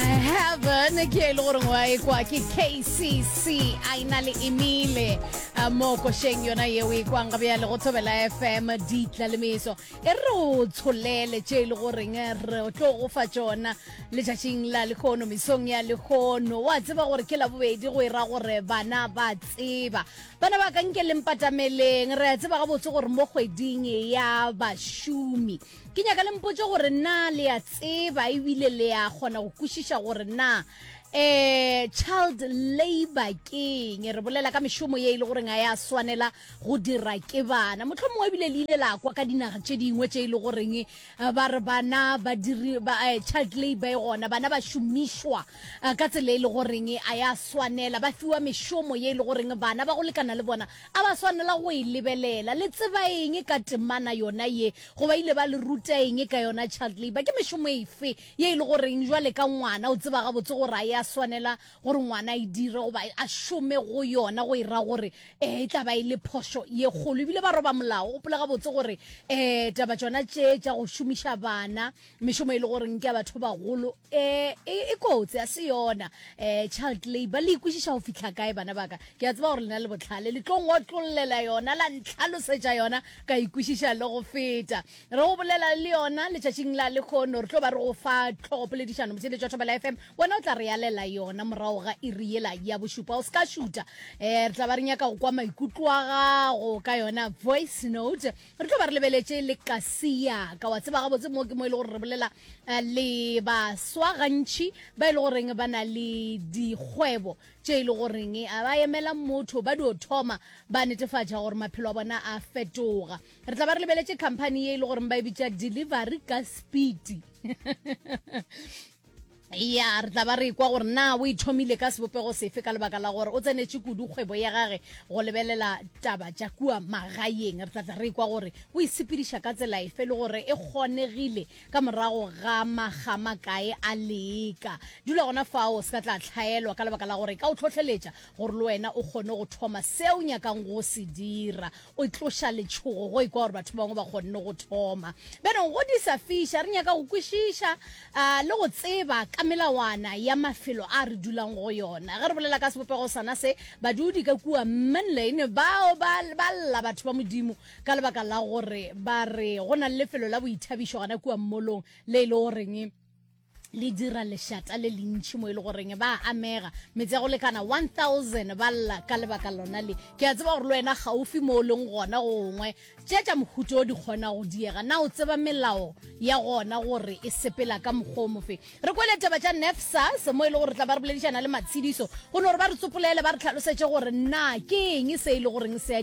heaven ke e le goreng wa e kwa ke kcc a e na le emile mo košeng yona yeo e kwang gabe ya le go thobela fm ditlalemiso e re o tsholele tše e le goreng re tlo go fa tsona letšatšing la lekgono mesong ya lekgono wa tseba gore ke labobedi go e ra gore bana ba tseba bana ba ka nke lempatameleng re a tseba gabotse gore mo kgweding ya bašomi ke nyaka le mpotse gore na le a tseba ebile le a kgona go kwešiša gore na um child labor keng re bolela ka mešomo ye e le goreng a ya swanela go dira ke bana motlho mongwe ebile le ile la kwa ka dinaga tše dingwe tše e le goreng eh, ba re bana ba diri ba eh, child labor e gona bana ba šomišwa eh, ka tsela e le goreng a ya swanela ba fiwa mešomo ye e le goreng bana ba go lekana le bona A ba swanela go e lebelela? Le tseba eng ka temana yona ye? Goba ile ba le ruta eng ka yona? Child labour ke mešomo efe ye e le goreng jwale ka ngwana o tseba gabotse gore a ya swanela gore ngwana a e dire goba a šome go yona go e ra gore um e tla ba e le phošo ye kgolo? Ebile ba roba molao. O gopola gabotse gore um taba tšona tše tša go šomiša bana mešomo e le goreng ke ya batho ba bagolo eh, e, e kotsi a se yona um child labor le ikwešiša go fitlha kae bana baka ke a tseba gore lena le botlhale le tlo ngotlololela yona la ntlhalosetša yona ka ikwešiša le go feta re go bolela le yona letšatšing la lekgono re tlo ba re go fa tlhogopoledišano motheletšwa thobela f m wena o tla re yalela yona morago ga iriela ya bošupa o se ka šuta um re tla ba re nyaka go kwa maikutlo a gago ka yona voice note Re tlo ba re lebeletše le Kasia ka wa tseba gabotse mo ke mo e le gore re bolela eh, le baswa gantši ba e le goreng ba na le dikgwebo tše e le goreng eh, a ba emela motho ba dio thoma ba netefatša gore maphelo a bona a fetoga re tla ba re lebeletše company ye e le goreng ba e bitša delivery ka speed ya re tla ba re kwa gore na o ithomile ka sebopego sefe ka lebaka la gore o tsenetše kudu kgwebo ya gage go lebelela taba tša kua magaeng re tlatla re kwa gore o isepediša ka tsela efe le gore e kgonegile ka morago ga magama kae a leka dula gona fao se ka tla tlhaelwa ka lebaka la gore ka o tlhohleletša gore le wena o kgone go thoma seo nyakang go se dira o tloša letšhogo go ikwa gore batho bangwe ba kgonne go thoma benong go di sa fiša re nyaka go kwešiša uh, le go tseba ka melawana ya mafelo a re dulang go yona ge re bolela ka sebopego sana se badudi ka kua manlane bao ba lla batho ba modimo ka lebaka la gore ba re go na le lefelo la boithabišo gana kua mmolong le e le goreng le dira lešata le lentši mo e le goreng ba amega metse ya go lekana 1000 ba lla ka lebaka lona le ke a tseba gore le wena gaufi mo o leng gona gongwe tše tša mohuto o di kgona go diega na o tseba melao ya gona gore e sepela ka mokgwa o mofe re kwele taba tša nefsas mo e le gore tla ba re boledišana le matshediso go ne gore ba re tsopolele ba re tlhalosetše gore na ke eng se e le goreng se a